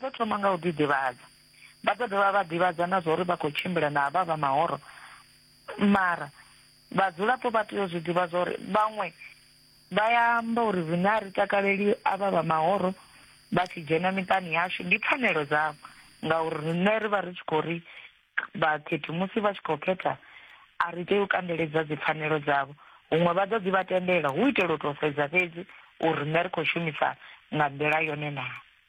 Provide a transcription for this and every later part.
Vha ḓo thoma nga u ḓiḓivhadza. Vha ḓo dovha vha ḓivhadza na zwauri vha khou tshimbila na havha vha mahoro. Mara vhadzulapo vha tea u zwi ḓivha zwauri vhaṅwe vha ya amba uri riṋe a ri takaleli avha vha mahoro vha tshi dzhena miṱani yashu. Ndi pfanelo dzavho ngauri riṋe ri vha ri tshi khou ri vhakhethi musi vha tshi khou khetha a ri tei u kandeledza dzipfanelo dzavho. Huṅwe vha ḓo ḓi vha tendela hu itela u tou sedza fhedzi uri riṋe ri khou shumisa nga nḓila yone naa.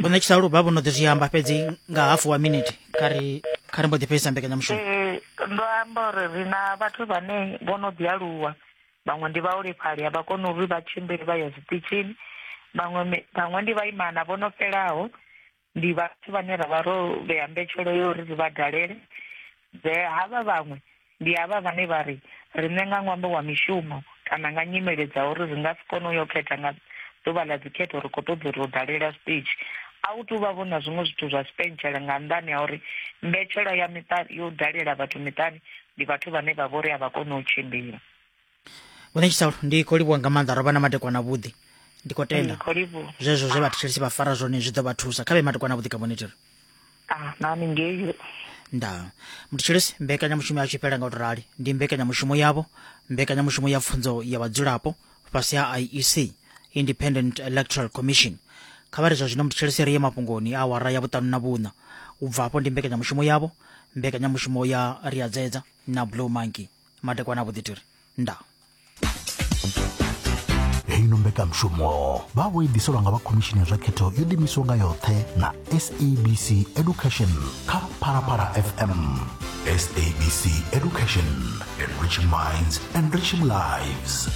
vho ṋetshisa luba vho no ḓi zwi amba fhedzi nga hafu wa minete kha ri kha ri mbo ḓi fhedzisa mbekanyamushumo eh, ndo amba uri ri na vhathu vhane vho no ḓi aluwa vhaṅwe ndi vhaholefhali a vha koni uri vha tshimbili vha ya zwiṱitshini vhaṅwe vhaṅwe ndi vhaimana vho no fhelaho ndi vhathu vhane ra vha ro vhea mbetshelo yo uri ri vha dalele Zwe havha vhaṅwe ndi havha vhane vha ri, Riṋe nga ṅwambo wa mishumo kana nga nyimele dza uri ri nga si kone u yo khetha nga ḓuvha ḽa dzikhetho ri khou ṱoḓa uri u dalela zwiṱitshi. A hu tou vha-vho na zwiṅwe zwithu zwa tshipentshela nga nnḓani ha uri mbetshelwa ya miṱa yo dalela vhathu miṱani ndi vhathu vhane vha vha uri a vha koni u tshimbila. vhone tshitsalu ndi khou livhuwa nga maanḓa ro vha na matekwana vhuḓi ndi khou tenda Ndi khou livhuwa. zwezwo zwe vhathetshelesi vha fara zwone zwi ḓo vha thusa kha vhe matekwana vhuḓi ka monitoro Ah, nami ngeyo. nda muthetshelesi mbekanyamushumo ya tshipela nga u to rali ndi mbekanyamushumo yavho mbekanyamushumo ya pfunzo ya vhadzulapo fhasi ha iec independent electoral commission kha vha ri zwa zwino muthetshelesi ri ye mafhungoni a awara ya vhuṱanu na vhuṋa u bva afho ndi mbekanyamushumo yavho mbekanyamushumo ya riadzedza na blue monkey madekwana vho ḓitiri nda heino mbekanmushumo vha vho i ḓiselwa nga vha khomishini ya zwa khetho yo ḓimiswa nga yoṱhe na sabc education kha phalaphala fm sabc education enriching minds enriching lives